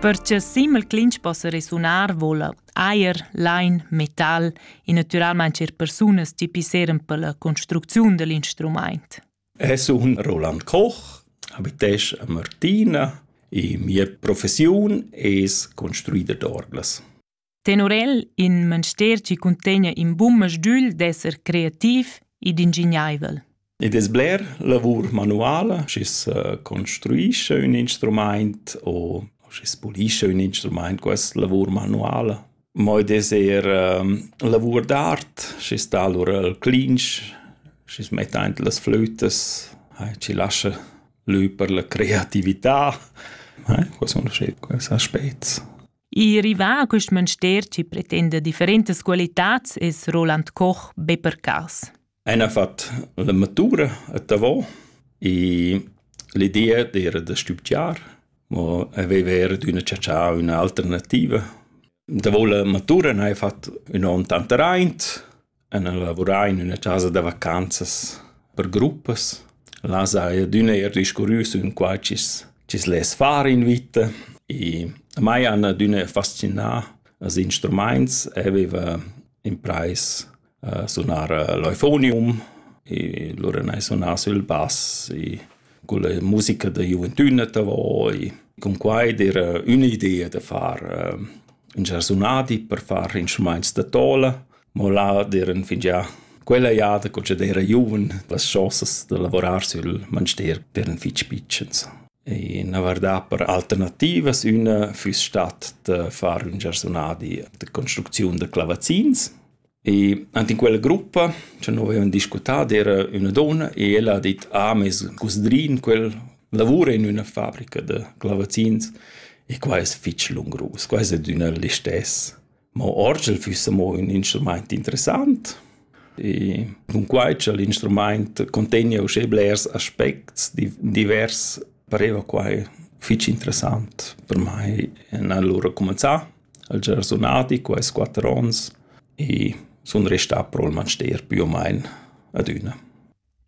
Per cha simel clinch possa resunar voula ajer, lain, metal e natüralmaing eir persunas chi pisseran pella construcziun da l'instrumaint. Es un Roland Koch, abitesch a Martina e mia professiun es construider d'orglas. Tenor el in manster chi cuntegna in bun masdügl d'esser creativ ed ingignaivel. Id es bler lavur manuala, schi's construischa ün instrumaint o schi's pulischa ün instrumaint, questa lavur manuala. Mo id es eir lavur d'art, schi's dà lura il clinch, schi's metta aint las flütas, chi lascha lö per la creatività. Quai sun schi quels aspets. I rivà a quist mönster chi pretenda differentas qualitats es Roland Koch be per cas. El ha fat la matura a Tavò e l'idea d'era da studiar, ma aveva era d'üna ciacià üna alternativa. Davo la matura n'haja fat ün on tant raint, En lavurar in üna chasa da vacanzas per gruppas. Là saja adüna eir discurrüs ün qua chi's chi's less far in vita. I mai han adüna fascinà als instrumaints. Eu vaiva imprais a sunar l'eufonium, i lura n'hai sunà sül bass, i cun la musica da giuventüna davo, i cun quai d'eira ün'idea da far ün giarsunadi per far instrumaints da tola. Mo là d'eran fingià quella jada co ch'd era giuven las chosas da lavorar sül manster eran fich pitschens. E na vardà per alternativas, üna füss stat da far ün giarsunadi da construcziun da clavazzins. E ant in quella gruppa cha no avevan discutà d'era üna donna e ella ha dit: «Ah, meis cusdrin, quel lavura in üna fabrica da clavazzins e quai es fich lungrus, quai es adüna listess.» Mo orgel füssa mo ün instrumaint interessant e cunquai cha l'instrumaint contegna uschè blers aspects divers pareva quai fich interessant per mai. Ün an lura cumanzà, al già sunadi quaist quatter ons e sun restà pro'l manster pü o main adüna.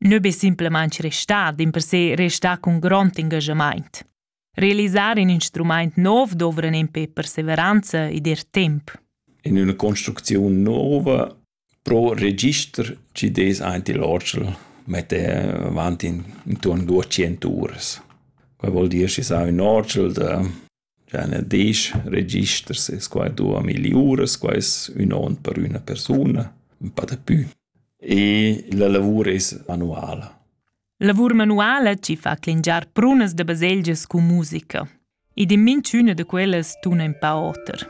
Nö be simplamaing restà, dimpersè restà cun grond ingaschamaint. Realisar in instrumaint nov dovran empè perseveranza ed er temp. In üna construcziun nouva pro register chi des aint il orgel mette avanti intorn 200 uras. Quai vuol dir schi sa ün orgel da già ne 10 registers es quai 2000 uras, quai es ün on per üna persuna, ün pa da pü. E la lavur es manuala. Lavur manuala ci fa clingiar prunas da baselgias cun musica. Ed in minchüna da quellas tuna in pa oter.